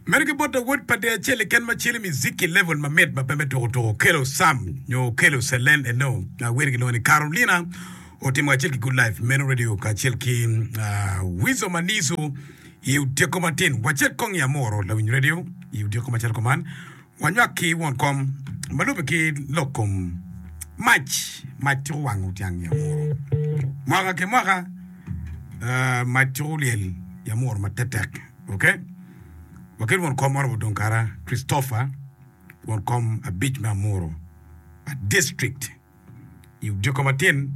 Meno ki bote wod pa dee acel keken ma celo miziki level ma mit ma pe me tuku tuku okelo Sam nyo okelo Celen eno ma wene gilwongo ni Carolina otimo kacel ki Good Life Meno Radio kacel ki uh, Weasel Manizu i otyeko matin wacel kong i Amoro lawiny radio i otyeko macalo kuman Wanywak ki won kom ma lube ki lok kom mac. Mac ciko wango tyang yamuru mwaka ki mwaka. Mac ciko lyel yamuru ma tektek. Ok, wakit won kom Honorable Dongkara Christopher, won kom abic me Amuru District, i odiko matin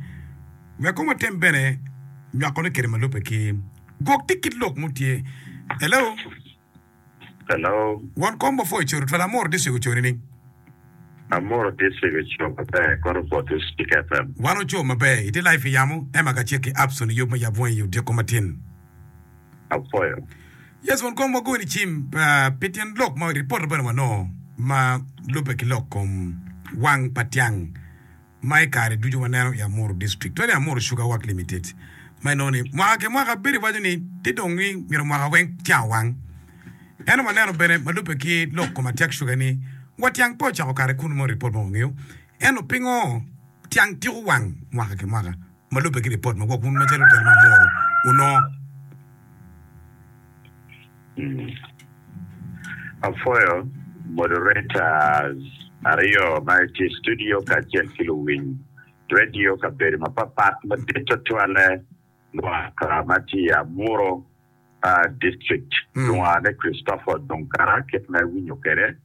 wek kong watem bene nywakone kede ma lube ki gwok tic ki lok mutye. Hello. Hello. Won kom ma pwoc codo twala amuru district oco nining? Amuru district oco maber kono bot Rustic FM. Wan oco maber. Itye live pi yamo. Emma ka cek ki apps onongo yub me yab wangi i odyeko matin. Apwoyo. Yes won kom wagoyo ni cim pi tyen lok ma report bene wanongo ma lube ki lok kom wang pa tyang. ma i kare ducu waneno i Amuru District, twene Amuru Sugar Work Limited, ma inongo ni mwaka ki mwaka bedo iwaco ni ti dong ni myero mwaka weng tyang owang. Ento waneno bene ma lubbe ki lok kom atyag cuga ni wa tyang pe ocako kare kun mo ripot ma wangeyo. Ento pingo tyang tiko wang mwaka ki mwaka ma lubbe ki ripot ma gwok wun macalo lutino me Amuru wunongo? Apwoyo moderators aryo ma tye i studio kacel ki luwiny radio kabedo mapatpat madit tutwalle mwaka ma tye i Amuru district lwonga ni Christopher Dunkara kit ma iwinyo kwede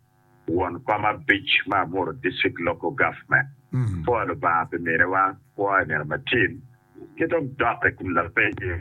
won kom abic me Amuru district local government. Apwoyo Lubanga pi miniwa, apwoyo nino Matin ki dong dok i kom lapenyo.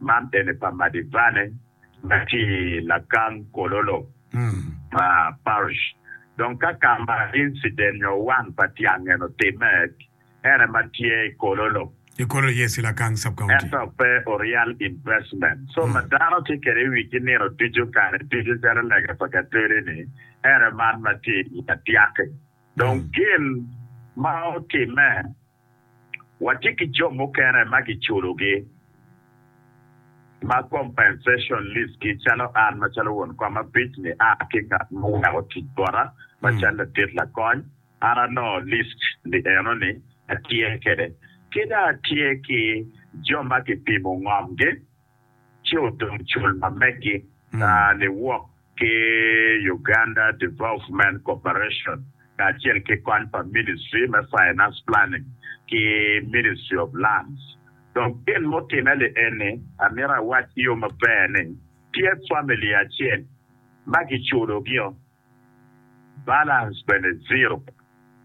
Man dene pa Madivane ma ki i lakang Kololo Parish. Dong ka ka ma incident nyo wan pa tyang eno otimme, en aye ma tye i Kololo. I Kololo, yes, i Lakang Sub County. Ento pe oryal investment. So ma dano tye kwede i wigi nino ducu, kare ducu calo lega pa Katweri-ni, en aye man ma tye i Adyaki. Dong gin ma otimme Watye ki jo mukene ma giculogi ma compensation lease-gi calo an macalo won kom abic ni a ki ngat ma oweko tic bota macalo ladit lakony an anongo list ni eno ni atye kede kida atye ki jo ma kipimo ngom gi ci odong cul ma megi kaa niwok ki Uganda Development Corporation kacel ki kony pa Ministry me Finance Planning ki Ministry of Lands. Dong gin mutimme li eni amito awac ki yo maber ni tye family acel ma giculogi o Balance bene ziro.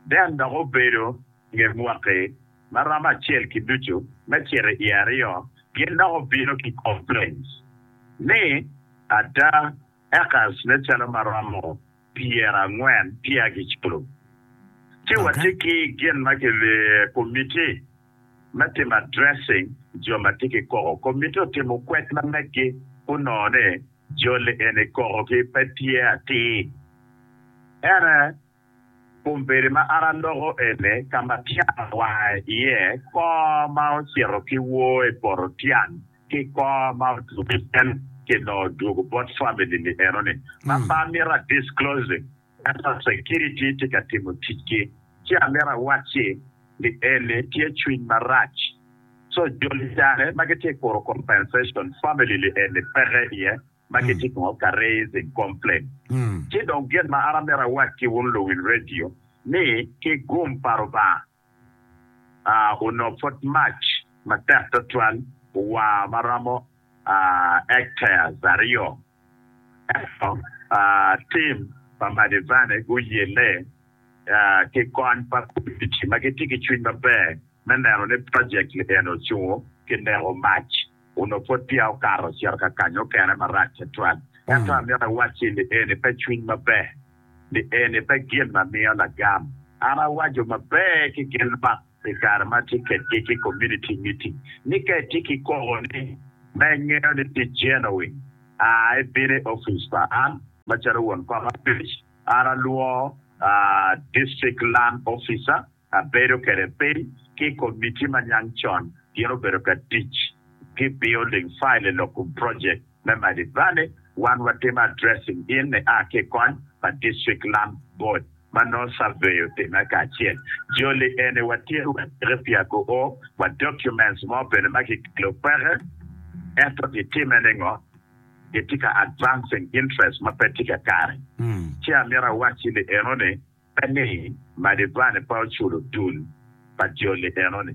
Den dok obedo nge mwaki ma romo acel ki ducu me cito i aryo, gin dok obino ki complaints ni ada acres ne calo ma romo pyera angwen peya gi culo. Ci wa tye ki gin ma ki committee me timo addressing jo ma tye ki koko. Committee otimo kwed ma megi gunongo ni. Joli eni kokogi pe tye atir. Ene, kombeddi ma an aloko eni ka ma tyen awae iye, kor ma ocito ki wor i poto tyen ki kor ma otum i cen ki nongo dwogo bot family ni enoni. Mama mito a disclosing Ento security tye ka timo ticgi. Ci amito awacci ni eni tye cwiny marac. So joli cane ma gitye kuro compensation family li eni peke iye ma gitye nongo ka raising complain. Ci dong gin ma an amito awac ki wun luwil radio ni ki gum pa Rubanga onongo pwod mac matek twatwal owa ma romo hectares aryo. Ento tim pa Madivane guyelle ki kony pa komitti ma gitye ki cwiny maber me neno ni project-ti eni ocungo ki neko mac. Onongo pud peya okato ocito ka kany mukene marac tutwal. Ento amito awacci ni eni pe cwiny maber, ni eni pe gin ma miyo lagam. An awaco maber ki gin man i kare ma atye kedgi ki komuniti miting, ni ka itye ki koboni ma ingeyo ni tye jenowin, a ibino i opic pa an. Macalo won kom abic, an alwor District Land Officer abedo kwede piny ki i kom miti ma niang con gin obedo ka tic ki building file i lok kom project me Mighty Valley, wan watimo addressing gin ni a ki kony pa District Land Board ma nongo survey otime kacel joli eni watye wa tiki pi ago o wa documents mo bene ma ki kelo kweke ento ki time ningo ki tye ka advancing interest ma pe tye kakare ci amito awacci ni eno ni pe ni Madivani pe oculo dul pa joli enoni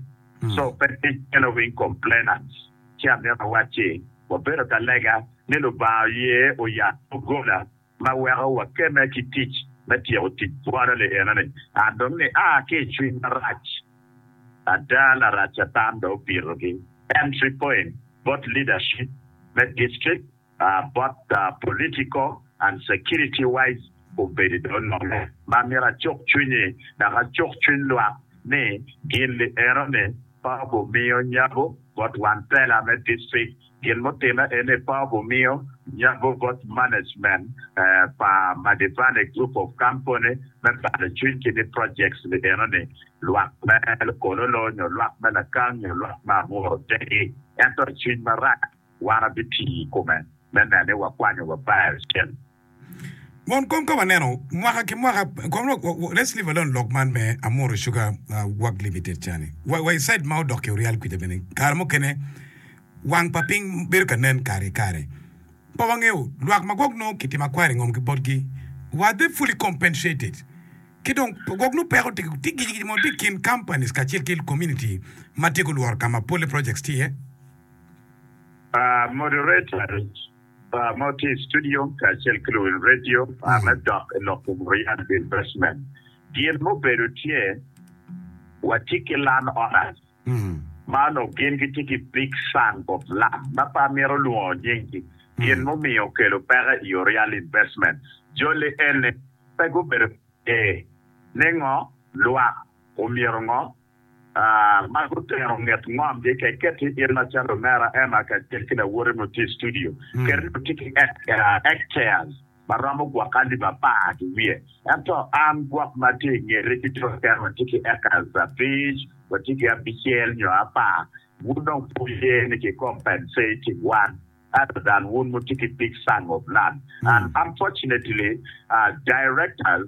so pe tic in owiny complainants ci amito awac ci wabedo ka lega ni Lubanga oye oyat dogola ma weko wakeme ki tic me tyeko tic bwolo-li enoni and dong ni aa ki i cwiny marac ada larac Catan dong obito ki entry point bot leadership me district Bot political and security wise obedo do nono ma myero acuk cwinyi dok acuk cwiny lwak ni gin liero ni pe ogumiyo nyago bot wan tela me district, gin mutime en ni pe ogumiyo nyago bot management pa Madivane group of company me balo cwiny ki ni projects liero ni lwak me Kololo nyo lwak me Lakang nyo lwak me Amuru tegi ento cwiny marac. wan abitiyo i kome me nene ni wakwanyo wa Baal cen. Mon kong ka waneno mwaka ki mwaka kong lok let's leave alone lok man me Amuru Sugar work limited ca ni wa i side ma odok ki oryal kwica bene kare mukene wang pa piny bedo ka nen kare ki kare pe wangeyo lwak ma gwok nongo kitimo akwara i ngom ki botgi were they fully compensated ki dong gwok nongo peko tye ki gici gici mo tye i kin companies kacel ki community ma tye gulworo ka ma polle projects tye iye. Moderator ma tye i studio kacel ki luwil radio me dok i lok kom Riyad Bill Bestman, gin mubedo tye watye ki Land Owners ma onongo gin gitye ki Big Son of Land ma pe amito lwongo nyinggi, gin mumiyo okelo peko i yo Riyad Investment joli eni pe gubedo ee ni ngo lwak omyero ngo. Mak otero nget ngom gi keketi in macalo omera Emma kacel ki lawote ma otye i studio. Keri dong tye ki Egg chairs ma romo gwok alip apar ki wiye. Ento an gwok ma tye i ngeti ki jo keken watye ki acres abic, watye ki abicel nyo apar. Wun dong pe wuye ni ki compensating wan ento dan wun wutye ki big sum of land and unfortunately directors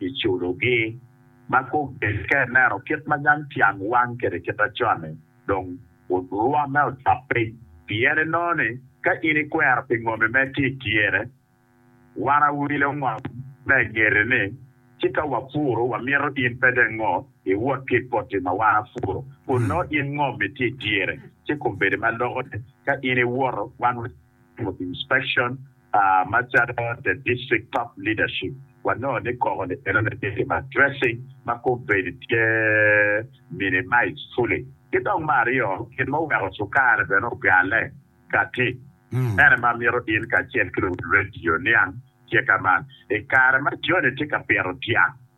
i culogi. Ma kogge ka ineno kit ma yam tyang wang kwede kit acon-ni, dong rwomme ocok piny, pien inongo ni ka in ikwero pi ngomi mere tye i tyene, wan awilo ngom me ngeti ni, ci ka wapuro, wamito in pe dong ngo iwot ki i poti ma wan apuro, kun nongo in ngomi tye i tyene, ci kombeddi ma loko ni ka in iwoto, wan Board inspection macalo the district top leadership wanongo ni koko ni bene onongo tye ki ma dressing ma kombeddi tye minimized fully ki dong me aryo gin ma oweko cukari bene ogale kati ene ma amito in kacel ki luwil radio niang tye ka man ikare ma Johnny tye ka pito dyang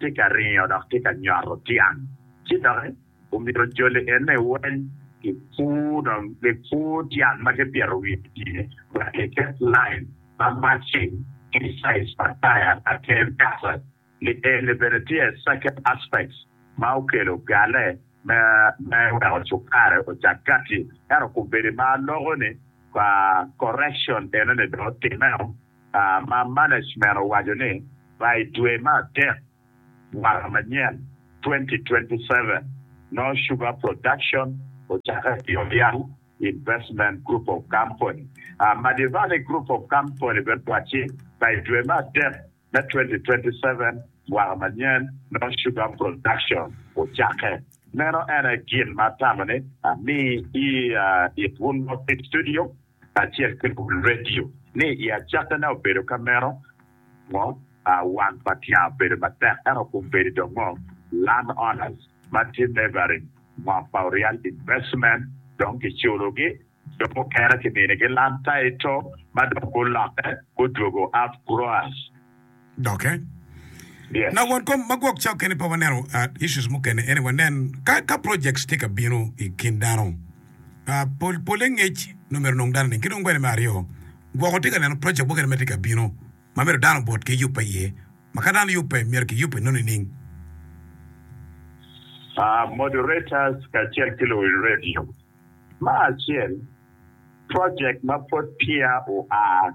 tye ka ringo dok tye ka nyoto tyang ci doki omyero joli ene weny ki pur dong ki pur tyang ma ki pito wiye tye wek ki ket line ma matching ki size pa taya pa ker kasa ni eni bene tye second aspects ma okelo gale me me weko cukare ocak kati ento kombedi ma loko ni correction ene ni dong otimeo. Ma management owaco ni ba i dwe me adek mwaka manyen 2027 no Sugar Production ocakke ki Oryal Investment Group of Company. Madirani Group of Company bene owacci ba i dwe me adek me 2027 mwaka manyen no Sugar Production ocakke. Meno en aye gin ma atamo ni ami i it wun lok ki studio kacel ki redio ni i acakkine obedo ka meno, ngo wang pa tyang obedo matek ento kombeddi dong ngo land owners ma tye neighboring ngo pa orial investment dong ki culo gi dong mukene ki mini gi land title ma dong gulokke gudwogo out growers. doke. Yeah. Na won kom ma gwok cao kene pe waneno uh, issues mukene ene wanen ka ka projects tye ka bino i kin dano uh, pol pole ngec nongo myero nong dano ni ki dong bene me aryo gwoko tye ka neno project mukene ma tye ka bino ma myero dano bot ki yubbe iye ma ka dano yubbe myero ki yubbe nongo nining? Uh, moderators kacel ki luwil radio, ma acel project ma pwod peya oa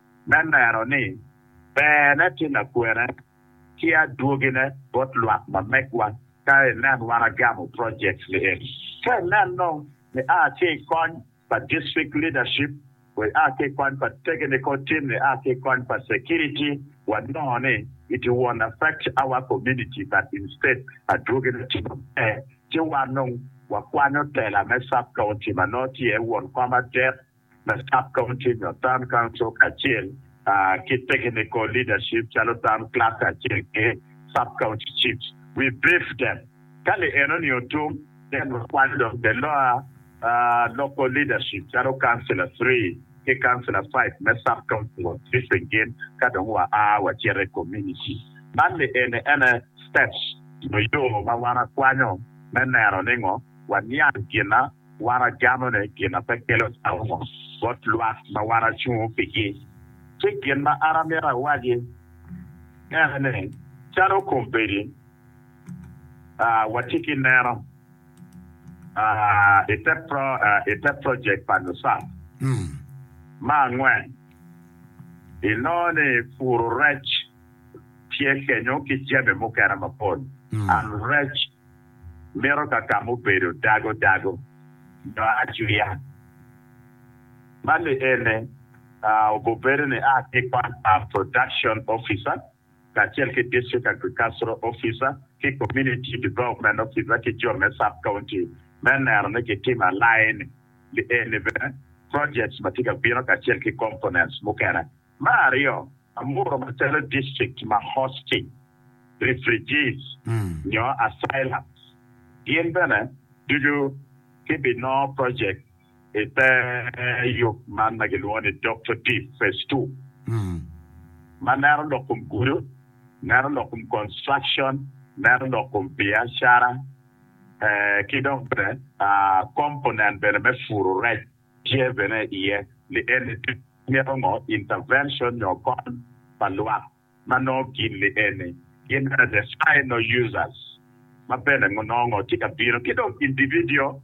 me neno ni berne ki lakwene ki adwogine bot lwak ma megwa ka inen wan agamo project ni eni. Ka inen dong ni a ki i kony pa district leadership wa a ki i kony pa technical team ni a ki i kony pa security wa nongo ni it won't affect our community but instead adwogine tye maber ci wan dong wa kwanyo tela me sub county ma nongo tye iye won kom adet me Sub Committees of Town Council kacel ki Technical Leadership calo Town Clerk acel ki Sub County Chiefs. We briefed them. Ka li enoni otum, then wakwanyo dong the lower local leadership calo Councillor Three ki Councillor Five me Sub Council of Briefing gin ka dong wa a wacito i community. Man li eni ene steps nyo yo ma wan akwanyo me neno ni ngo waniang gina. Wan ajamone gin ma pe kelo caungo bot lwak ma wan acungo pigi. Ci gin ma an amito awaci en ni, calo kombeddi watye ki neno i te projek pa NUSAP me angwen, inongo ni puro rec tye kenyo ki jami mukene mapol. mito ka ka mubedo dago dago nyo acwiya. Man ni ene obubedo ni a ki kwan pa Production Officer kacel ki District Agricultural Officer ki Community Development Officer ki jo me Sub County me neno ni kitimo aline ni eni bene projects ma tye ka bino kacel ki components mukene. Me aryo, Amuru macalo district ma hosting refugees nyo asylums, gin bene ducu gibinongo project i te yub man ma gilwongo ni Doctor Deep Phase Two ma neno lok kom gudo, neno lok kom construction, neno lok kom biacara ki dong bene component bene me puru rec. Tye bene iye lienni ducu ma mito ngo, intervention nyo kony pa lwak ma nongo gin lienni gin bene the final users ma bene nongo ngo tye ka bino ki dong individual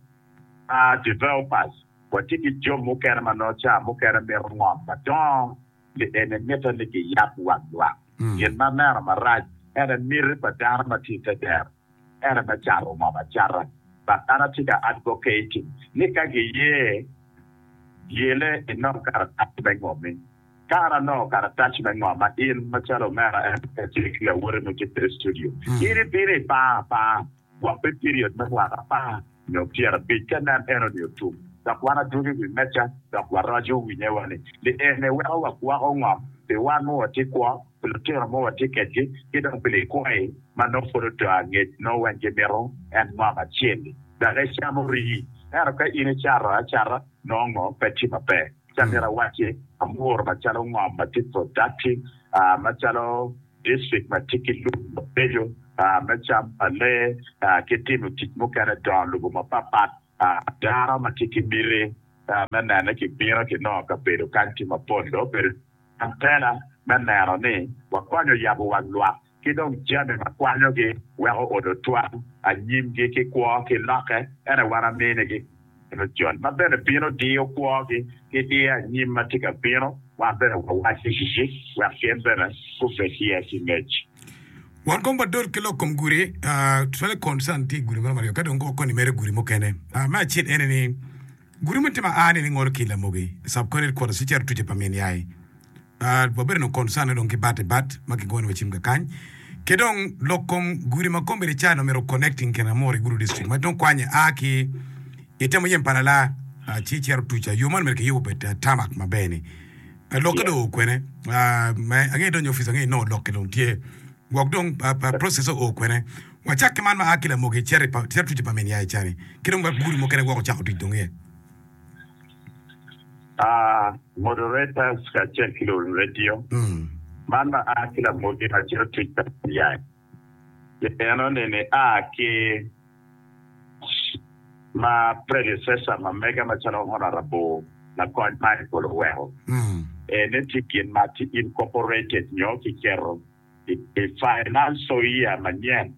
developers. Watye ki jo mukene ma nongo ca mukene mito ngo madongo lienni mite ni giyab wang lwak. Gin ma meno marac ene miti pa dano ma tye i te dero. Ere me cato moo macata ma an atye ka advocating ni ka giye yele inong karatac me ngomi. Ka an anongo karatac me ngoma in macalo omera en pe atye ki lawoti mo tye kwede i studio, in ibino ipar apar gwok me period me mwaka apar nyo pyer abic ka nen eno ni otum dok wan adwogo i wi meca dok waroco winye wa ni en iweko wagwoko ngom pi wan ma watye kwo. pi lutino ma watye kedgi ki dong pi likwayi ma nongo pud oto angec nongo weng gimito en mwaka acel-li. Dok ecamo rii. Ento ka in icato acata nongo ngo pe tye maber? Ci amito awacci amuru macalo ngom ma tye productive macalo district ma tye ki lum mabeco me cam pa lee ki timo tic mukene dongo lobo mapat pat dano ma tye ki miti me nene kibino kinongo kabedo kany tye mapol dong obedo Antena me neno ni wakonyo yabo wang lwak ki dong jami ma kwanyogi weko odo twam anyimgi ki kwo ki lokke ene wan aminigi meno joni ma bene bino diyo kwogi ki diyo anyim ma tye ka bino wan bene wawaco gigi wek gin bene gubed iye ki ngec. Wan kong wadot ki lok kom gudi, totally concern tye i gudi meno maryo ka dong koni mere gudi mukene. Me acel ene ni Gudo me timo aa ni ni ngolo ki lamogi subconit kwodo sicer tuce pa min yai aa wabedo no concern dong ki bat i bat ma ki gono wa cim kakany ki dong lok kom gudi ma kom bedi calo mito connecting kin amuri gudo district ma dong kwanye aa ki i temo yem pa lala aa ci cero tuce aa yo man mere ki yubo bed tamak ma ber ni aa lokke dong oo kwene aa me ange donyo office ange nongo lokke dong tye gwok dong aa process oo kwene. Wacak ki man ma a ki Lamogi cito i twecci pa min ya icani ki dong wek gudo mukene woko cako tic dong iye. A, Moderators kacel ki luwil redio, man ma a ki Lamogi ma cito twec pa min ya icani eno ni ni a ki ma predecessor ma mega macalo Honourable Lakony Michael oweko ene tye gin ma tye incorporated nyo ki keto I financial year manyen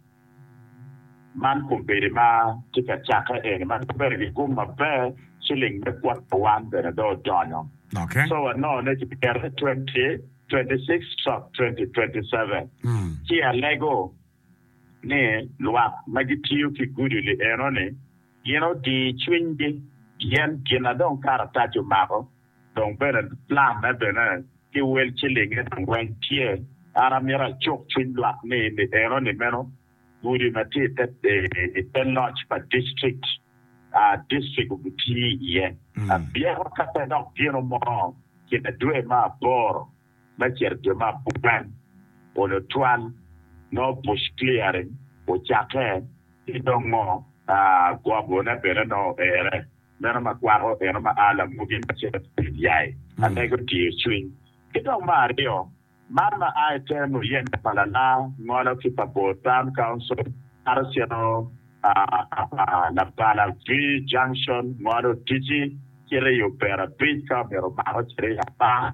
man kombeddi ma tye ka cakke eni ma bedo ki gum maber, ciling me kwota one bene dong odonyo. So wanongo ni ki kete twenty twenty six stroke twenty twenty seven. Ci alego ni lwak ma gitiyo ki guduli eno ni gin odii cwinygi pien gin na dong karatac omako Dong bene lamme bene ki wel cilinge dong weng tye. An amito acuk cwiny lwak ni ni eno ni meno gudi ma tye i te loc pa district a district obitiye iye abyeko ka pe dok gino mo kine dwe me aboro. me cito jo me apwan onyo cwan, no bush clearing, ocakke ki dong ngo gobo ne bene no ere, meno ma kwako eno ma a lamugi ma cito ki pid yai amego diyo cwiny. Ki dong me aryo, man ma a iter muyeme pa lalar ngolo ki pa bor town council kato cito apa labala V junction ngolo Otici cito i Obera bridge ka omito mako cito i apa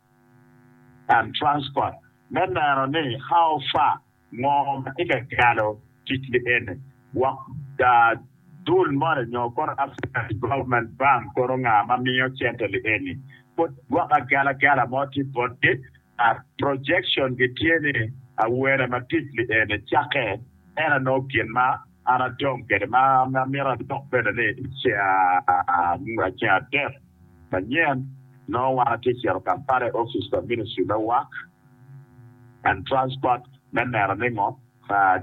and Transport me neno ni how far, ngo ma tye ka calo tic ki eni wok dul moni nyo kono African Development Bank kono nga ma miyo cente li eni pud gwok agalagala mo tye botgi kat projection gi tye ni awene ma tic li eni cake en anongo gin ma An adong kede ma amito adok bene ni ceng adek manyen nongo wan atye cito Kampala i opic pa ministry me work and transport me neno ningo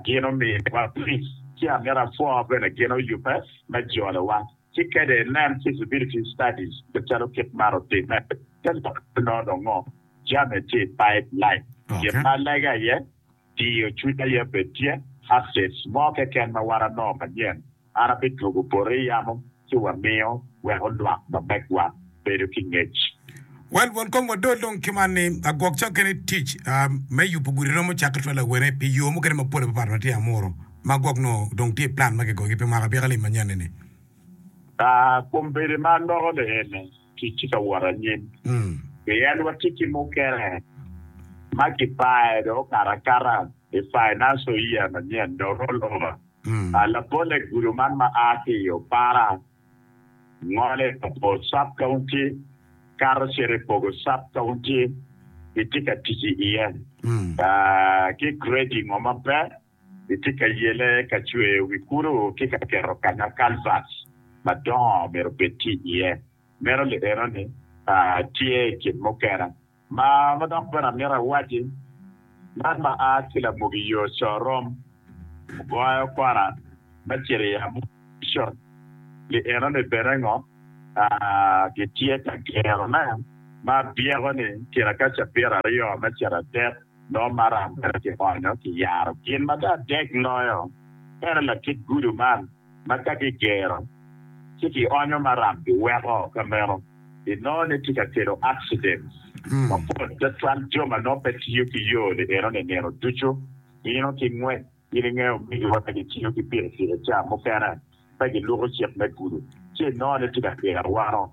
gin omiwa fees ci amito apwo bene gin oyube me jolo wa ci kede inen feasibility studies macalo kit man otime te lok nongo jami tye i pipe line gin ma alege aye diyo cwiny aye bed tye updates mo keken ma wan anongo manyen an abidwogo bote i yamo ci wamiyo wek olwak mamegwa bedo ki ngec. Well won kong wadol dong ki man ni agwok ca okene tic me yubu gudi romo cake twelve awene pi yo mukene mapol apapat ma tye amuru ma agwok nongo dong tye plan ma kigoyo gi pi mwaka abyeka lim manyen ni ni. Aa, kombeddi ma anoko ni ene. tic tye ka wot anyim. Pien watye ki mukene ma kipayo dong okato akata i financial year manyen dong roll over. Labolle gudo man ma a ki i Opara, ngole ka Bor sub county, kato cito i Pogo sub county, kitye ka tic i iye ki grading o ma pe. Itye ka yele ka cweyo wi kulu ki ka keto kanya kalvats madongo myero obed tye iye? Meno li enoni tye i kin mukene. Ma dok bene amito awaci, man ma a ki lamugi yo corom ogoyo kona me cito i amushon li enoni bene ngo gitye ka gerone ma byeko ni kine ka cabit aryo me cito adek? Dong maram bene kionyo ki yaro gin ma tar dek loyo tere latit gudo man ma ka kigero ci kionyo maram kiweko ka meno i nongo ni tye ka kelo accidents mapol twatwal jo ma nongo pe tiyo ki yo ni eno ni nino ducu bino ki ngwec in ingeyo omegi wa ka gitiyo ki pikipiki ca mukene pe giluko cik me gudo ci inongo ni tye ka gero wano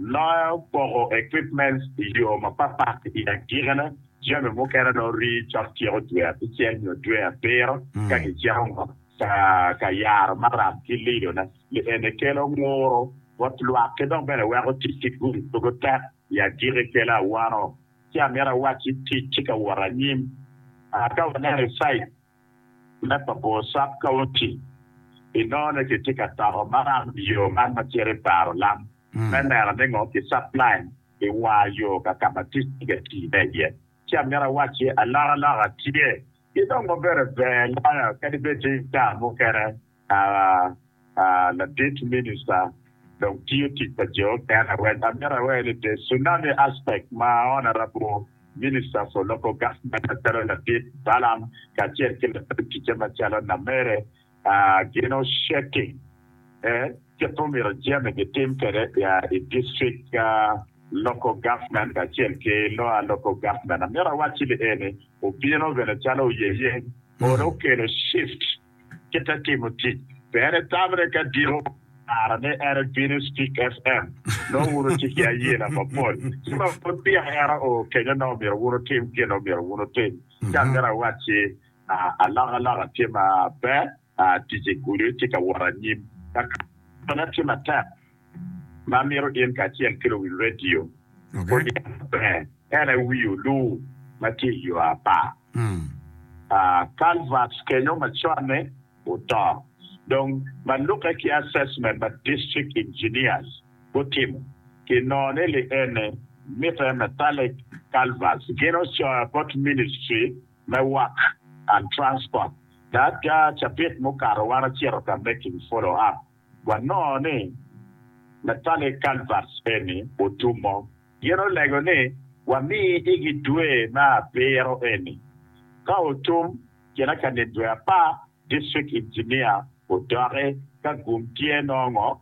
Loya opoko equipments i yo mapatpat i agikine, jami mukene nongo rii cok tyeko dwe abicel nyo dwe abiro ka gicito ngot ka ka yaro maram ki lidone. Li eni kelo nguru bot lwak ki dok bene weko tic ki gudo dwogo tek. I agikki kelo awano ci amito awacci tic tye ka wot anyim. Ka waneno i cite. me Papo Sub County inongo ki tye ka toko maram i yo man ma cito i baro lam me neno ni ngo ki supply i war yo ka ka ma tic tye ka tii ne iye. Ci amito awaci alokaloka tye ki dong ma bedo ber loyo kadi bed ni taa mukene. Ladit Minista dong tiyo tic pa Jehovah en awec. Amito awer ni The Tsunami Aspect ma Honourable Minister for Local Government macalo Ladit Balam kacel ki latin ticce macalo Namere gin osheki e kit ma omyero jami gitim kwede i District Local Government kacel ki Lower Local Government. Amito awacci ni eni obino bene calo oyeye or okelo shift. ki te timo tic. Pe en etamre ka diko kara ni en ebino i Stick FM. Nongo wun wutye ki ayena mapol. Ci ma pud peya en oo kenyo nongo myero wun wutim gin ma myero wun wutim. Ci an myero awacci alokaloka tye maber, tic i gudo tye ka wot anyim. Lakana tye matek ma mito in kacel ki luwil redio oniang maber, en aye wi oluu ma tye i yo apar. Culverts kenyo maconne oto, dong ma lukke ki assessment ma district engineers gutimo kinongo ni liene mitte metallic culverts. Gin ocoyo bot ministry me work and transport, dok cabit mukato wan ocito ka making follow up. Wanongo ni Natale Calvert eni otumo gin olego ni wami igi dwe me abiro eni. Ka otum, kine ka nit dwe apar, District Engineer odoki ka gum tye nongo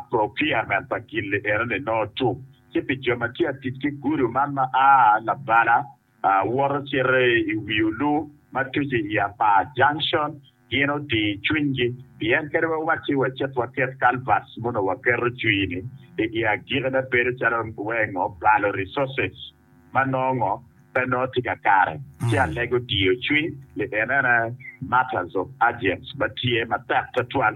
procurement pa gin-ni eno ni nongo tum, ci pi jo ma tye ka tic ki gudu man ma a labala, Awoto cito i wi olu ma tuco i Apar Junction, gin otir cwinygi pien kadi wawacci wacit waket culverts mono waketo cwii-ni igi agikine bedo calo weng obalo resources ma nongo pe nongo tye kakare ci alego diyo cwiny pi enene matters of urgence ma tye matek twatwal.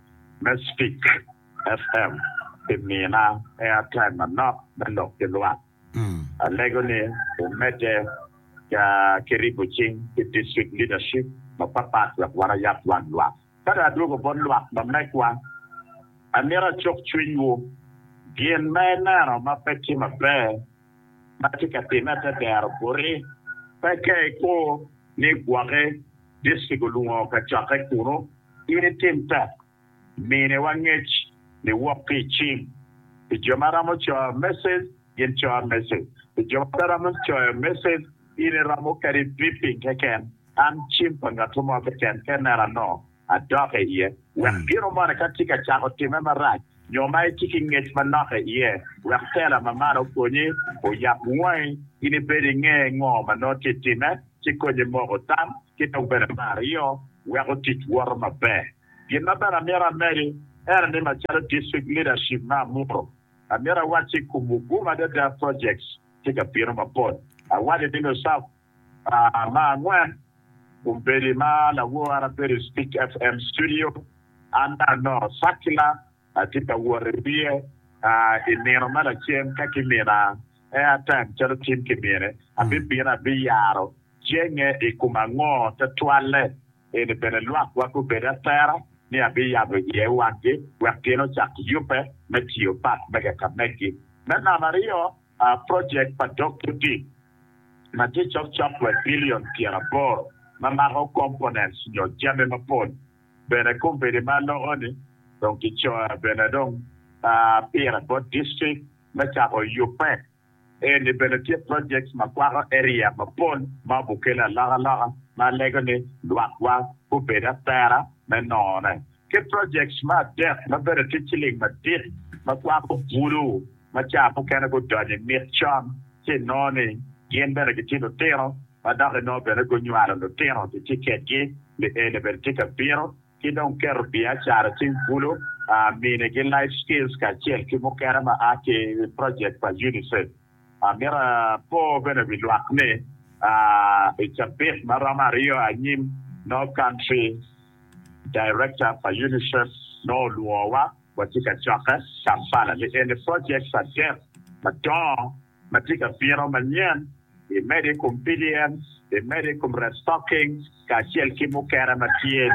me Speak FM pi mina airtime manok me lok ki lwak. Alego ni wumedde ki ribo cing ki district leadership mapapat wek warayab dwan lwak. Ka dong adwogo bot lwak ma megwa, amito acuk cwinywu. Gin ma ineno ma pe tye maber ma tye ka timme i te dero boti, peke ikur ni igwoki. Distrik olungo kacokke kunu, in itim tek minewa ngec niwok ki i cing. Pi jo ma ramo coyo message, gin coyo message. Pi jo ma pe ramo coyo message, in iromo kadi beeping keken, an cim pa ngatto mo keken, kennena nongo adok iye, wek gino moni ka tye ka cako timme marac, nyo ma itye ki ngec manok i iye, wek tela ma malo okonyi, oyab wangi, in ibed inge ngo ma nongo tye time, ci konyi moko tam, ki dok bene me aryo, wek otic woto maber. Gin ma bene amito amedi ene ni macalo District Leadership ma amuro, amito awacci i kom Muguma Adada Projects tye ka bino mapol. Awacci ni Lusafa Me angwen, kombeddi ma lawora bedo i Stick FM studio. An dong anongo circular atye ka wot i wiye i nino ma lacen ka kimina airtime calo Tim kimine, abibino abiyaro jenge i kom ango te twale. Eni bene lwak wa gubedo atera ni abiyabo iye wangi wek gin ocak yubbe me tiyo pat mege ka megi. Me namaryo, Projek pa dog tutik ma tye cok copwet bilion pyeraboro ma mako components nyo jami mapol bene kumpini ma loko-ni dong kicoya bene dong pire bot distrik me cako yubbe. Eni bene tye projects ma kwako area mapol ma obukele alokaloka ma alego ni lwakwa gubed atera me nongone. ki projects me adek ma bedo ki ciling madit ma kwako bulu ma cawa mukene gudonyo i mit con ci inongo ni gin bene gitye lutino ma dok inongo bene gunywalo lutino ki kiketgi lieni bene tye ka bino ki dong keto biacara cing bulu minigi life skills kacel ki mukene ma a ki project pa UNICEF. Mito apor bene wi lwak ni, i cabit ma romo aryo anyim, no country director pa UNICEF no olwowa watye ka cokke Kampala ni eni projects adek madongo ma tye ka bino manyen, imedo i kom PDM, imedo i kom restocking, kacel ki mukene ma tye.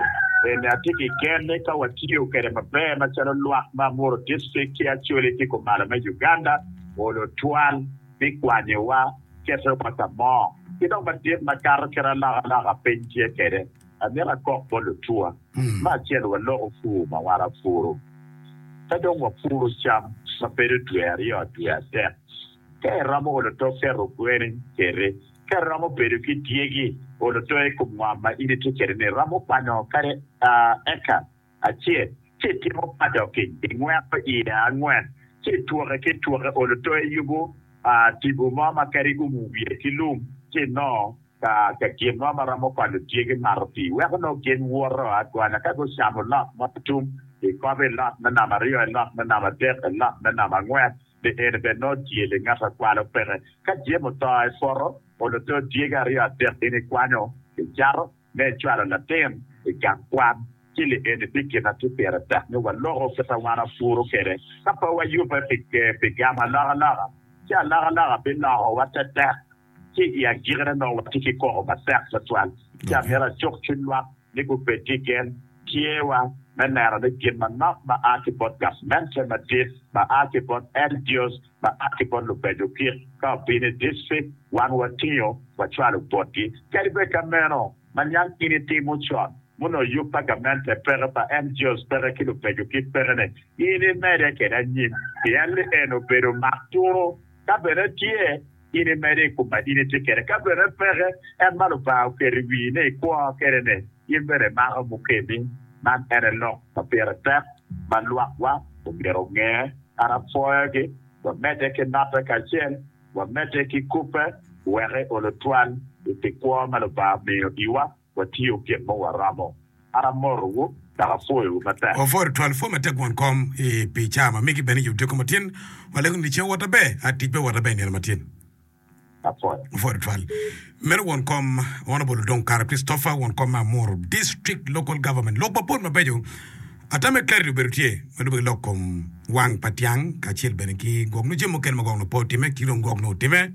Bene atye ki gen ni ka watiyo kwede maber macalo lwak ma Amuru District ki Acholi ki kumalo me Uganda olo twal me kwanyowa, ketowa ka mo, ki dong madit makato kit alokaloka piny tye kwede, amito akok bot lutuwa me acel waloko pur ma wan apuru. Ka dong wapuru cam ma bedo dwe aryo dwe adek, Ka iromo olo tok cito kwene, citi. Ka iromo bedo ki dyegi, olo tok i kom ngom ma in itye kwede-ni. Iromo kwanyo kadi eka acel, ci itimo padoking, ingweko iye angwen, ci itwoke ki itwoke. Olo tok iyubo tipo mo ma kadi iumo wiye ki lum, ci inongo ka gin mo ma romo konyo dyegi mato pii, weko nongo gin woto agonya. Ka gucamo lot mo tum, ikobo i lot me namba aryo, i lot me namba adek, i lot me namba angwen. Pi eni bene nongo tye li ngat a kwalo peke. Ka jemo oto i poto, olo too dyegi aryo adek gin ikwanyo, icato, me icwalo latin i gang kwan. Ci li eni tye gin a tye pire tek ni waloko kit a wan apuru kwede. Ka pe wayubbe pi gamo alokaloka, ci alokaloka bilokowa tetek. Ki i agikine nongo watye ki koko matek twatwal ci amito acuk cwiny lwak ni gubed ki gen tyewa me neno ni gin manok ma a ki bot gavmente madit, ma a ki bot NGOs, ma a ki bot lubedo kit ka obino i distrik, wan watingo wacwalo botgi. Kadi bed ka meno, ma niang in itimo con ma onongo yub pa gamente peke, pa NGOs peke ki lubedo kit peke-ni, in imede kwede anyim pien lieno obedo mak tunu ka bene tye. In imede i kom ma in itye kwede. Ka bene peke, en ma Lubanga oketo i wii ni ikwo kwede-ni, in bene imako mukemi. Man en aye lok ma pire tek ma lwakwa omyero onge, kadi apwoyogi, wamedde ki mape kacel wamedde ki kubbe, wek eolo twal i pi kwo ma Lubanga omiyo iwa. Watiyo gin ma waramo. An amotowu dok apwoyowu matek. Wapwodo twal pwo matek won kom i pi caa ma migi bene yub tyeko matyen. Walego ni ceng owoto aber, a tic be owoto aber nino matyen. Apwoyo. Wapwodo twal. Meno won kom Honourable Dong Kara Christopher, won kom me Amuru District Local Government. Lok mapol mabeco ata me clarity obedo tye ma lube ki lok kom wang pa tyang kacel bene ki gwok nyo jami mukene ma gwok nyo pe otime ki dong gwok nyo otime.